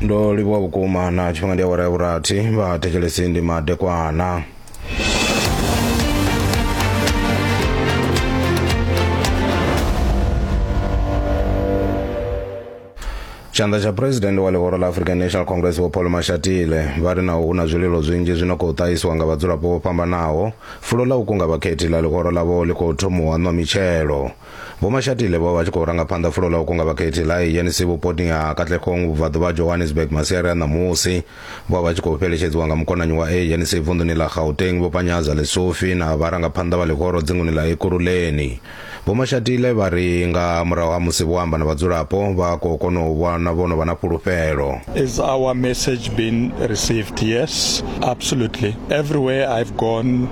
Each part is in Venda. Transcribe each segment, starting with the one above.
ndo livhuwa vhukuma na tshifhinga ndi awara ya vhurathi vha thetshelesi ndi madekwana tshanḓa tsha phuresidennde wa ḽihoro ḽa african national congress vho paul mashatile vha ri naho hu na zwililo zwinzhi zwi no khou ṱahisiwa nga vhadzulapo vho fhambanaho fulo ḽa u kunga vhakhethi ḽa ḽihoro ḽavho ḽi khou thomuwa nwa mitshelo Vho Mashatile vho vha tshi khou ranga phanḓa fulo ḽa u kunga vhakhethi ḽa ANC vhuponi ha Katlehong vhubvaḓu vha Johannesburg masiari a ṋamusi. Vho vha vha tshi khou fheletshedziwa nga mukonanyi wa ANC vunḓuni ḽa Gauteng Vho Panyaza Lesufi na vharangaphanḓa vha ḽihoro dzinguni ḽa Ekurhuleni. Vho Mashatile vha ri nga murahu ha musi vho amba na vhadzulapo vha khou kona u vhona vho no vha na fhulufhelo. Is our message been received? Yes, absolutely. Everywhere I've gone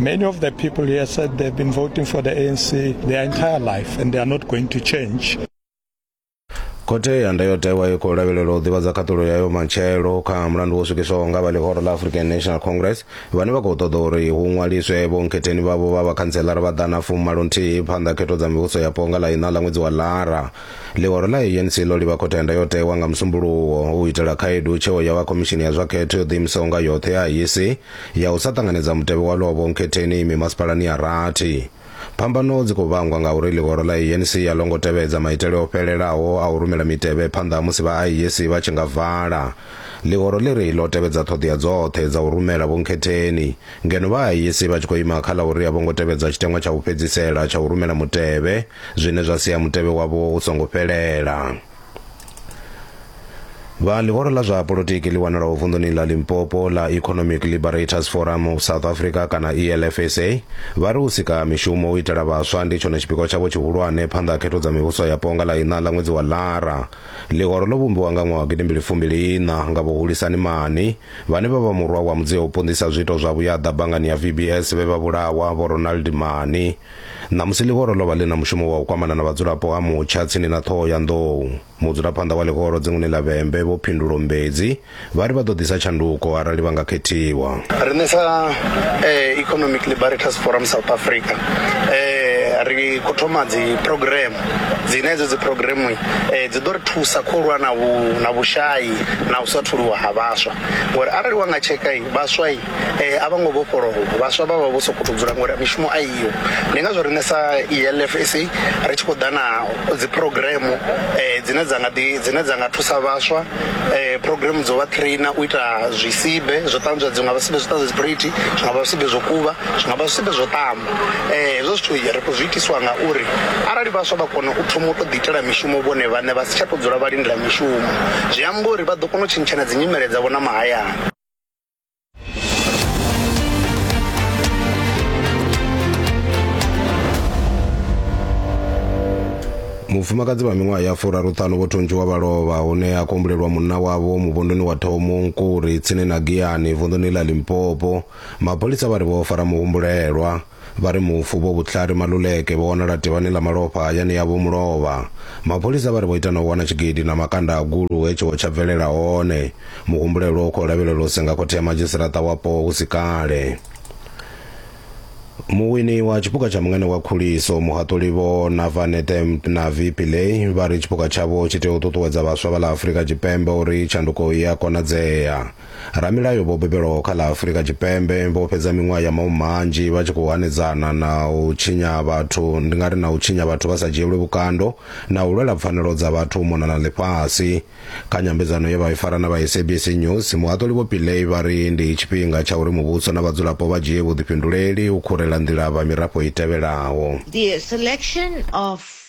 Many of the people here said they've been voting for the ANC their entire life and they are not going to change. khothe ya ndayotewa i khou lavhelela u ḓivhadza khaṱulo yayo matshelo kha mulandu wo swikiswaho nga vha ḽihoro ḽa african national congress vhane vha khou ṱoḓa uri hu ṅwaliswe vhonkhetheni vhavho vha vhakhantselara vha ḓana fumalo nthihi phanḓa khetho dza mivhuso yapo nga ḽa iṋa ḽa ṅwedzi wa ḽara ḽihoro ḽa anc ḽo livha khothe ya ndayotewa nga musumbuluwo u itela khaedu tsheo ya vha khomishini ya zwa khetho yo ḓiimisaho nga yoṱhe ya iec ya u sa ṱanganedza mutevhe wa lovho nkhetheni mimasipalani ya rathi. Phambano dzi khou vhangwa ngauri ḽihoro ḽa ANC a ḽo ngo tevhedza maitele o fhelelaho a u rumela mitevhe phanḓa ha musi vha IEC vha tshi nga vala. Ḽihoro ḽi ri ḽo tevhedza ṱhoḓea dzoṱhe dza u rumela vhunkhetheni, ngeno vha IEC vha tshi khou ima kha ḽa uri a vho ngo tevhedza tshiteṅwa tsha u fhedzisela tsha u rumela mutevhe, zwine zwa sia mutevhe wavho u songo fhelela. vha ḽihoro ḽa zwa polotiki ḽi wanalaho vunḓuni ḽa limpopo ḽa economic liberators forum of south africa kana elfsa vha ri u sika mishumo u itela vhaswa ndi tshone tshipikwa tshavho tshihulwane phanḓa ha khetho dza mivhuso ya ponga ḽa iṋa ḽa ṅwedzi wa lara ḽihoro ḽo vhumbiwa nga ṅwaha gidi mbili fumbili iṋa nga vhuhulisani mani vhane vha vha murwa wa mudzio u ponḓisa zwiito zwa vhuyaḓa bangani ya vbs vhe vha vhulawa vho ronald mani Ṋamusi ḽihoro ḽo vha ḽi na mushumo wa u kwamana na vhadzulapo ha Mutsha tsini na ṱhoho ya nḓou. Mudzulaphanḓa wa ḽihoro dzinguni ḽa Vhembe Vho Phindulo Mbedzi vha ri vha ḓo ḓisa tshanduko arali vha nga khethiwa. Riṋe sa Economic Liberators Forum South Africa ri khou thoma dzi phurogireme dzine hedzo dzi phurogireme dzi ḓo ri thusa khou lwa na vhu na vhushai na u sa tholiwa ha vhaswa ngori arali wa nga tsheka vhaswa eh a vha ngo vhofholowa vhaswa vha vha vho sokou dzula ngori mishumo a iyo ndi ngazwo riṋe sa ELF sa ri tshi khou ḓa na dzi program eh dzine dza nga ḓi dzine dza nga thusa vhaswa eh program dzo vha trainer u ita zwisibe zwo ṱanzwa dzi nga vha sibe zwo ṱanzwa dziphuriti zwi nga vha sibe zwo kuvha zwi nga vha sibe zwo ṱamba eh hezwo zwithu ri khou zwi itiswa nga uri arali vhaswa vha kona u thoma u to ḓi itela mishumo vhone vhaṋe vha si tsha to dzula vha lindela mishumo zwi amba uri vha ḓo kona u tshintshana dzi nyimele dzavho na mahayani. mufumakadzi wa miṅwaha ya furaruṱhanu vho thuntshiwa vha lovha hune a kombulelwa munna wavho muvhunduni wa thomunkuri tsini na giyani vunḓuni ḽa limpopo mapholisa vha ri vho fara muhumbulelwa Vha ri mufu Vho Vutlhari Maluleke vho wanala tivhani ḽa malofha hayani yavho mulovha. Mapholisa vha ri vho ita na u wana tshigidi na makanda a gulu he tshiwo tsha bvelela hone. Muhumbulelwa u khou lavhelelwa u senga khothe ya madzhisiṱaṱa wapo hu si kale. Muwini wa tshipuka tsha Mungane wa Khuliso, Muhaṱuli Vho Navanethe Mtnavi Pillay vha ri tshipuka tshavho tshi tea u ṱuṱuwedza vhaswa vha ḽa Afrika Tshipembe uri tshanduko i a konadzea. Ramilayo vho bebelwaho kha ḽa Afurika Tshipembe vho fhedza miṅwaha ya maumi manzhi vha tshi khou hanedzana na u tshinya vhathu ndi nga ri na u tshinya vhathu vha sa dzhielwi vhukando na u lwela pfanelo dza vhathu u mona na ḽifhasi. Kha nyambedzano ye vha i fara na vha SABC News, muhaṱuli Vho Pillay vha ri ndi tshifhinga tsha uri muvhuso na vhadzulapo vha dzhie vhuḓifhinduleli u khurela nḓila vha mirafho i tevhelaho. The selection of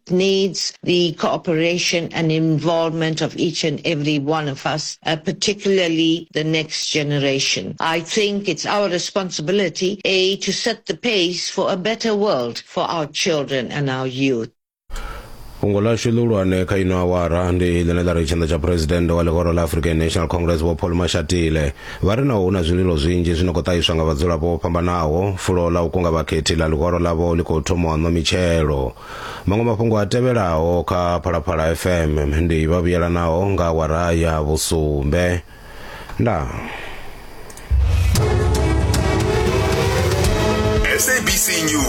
It needs the cooperation and involvement of each and every one of us, uh, particularly the next generation. I think it's our responsibility, A, to set the pace for a better world for our children and our youth. fhungo lashu ḽihulwane kha ino awara ndi ḽine ḽa ri tshanḓa tsha phuresidennde wa ḽihoro ḽa african national congress vho paul mashatile vha ri naho hu na zwililo zwinzhi zwi no khou ṱahiswa nga vhadzulapo vho fhambanaho fulo ḽa u kunga vhakhethi ḽa ḽihoro ḽavho ḽi khou thoma u ṋwa mitshelo Maṅwe mafhungo a tevhelaho kha Phalaphala FM ndi vha vhuyelanaho nga awara ya vhusumbe. Ndaa. SABC News.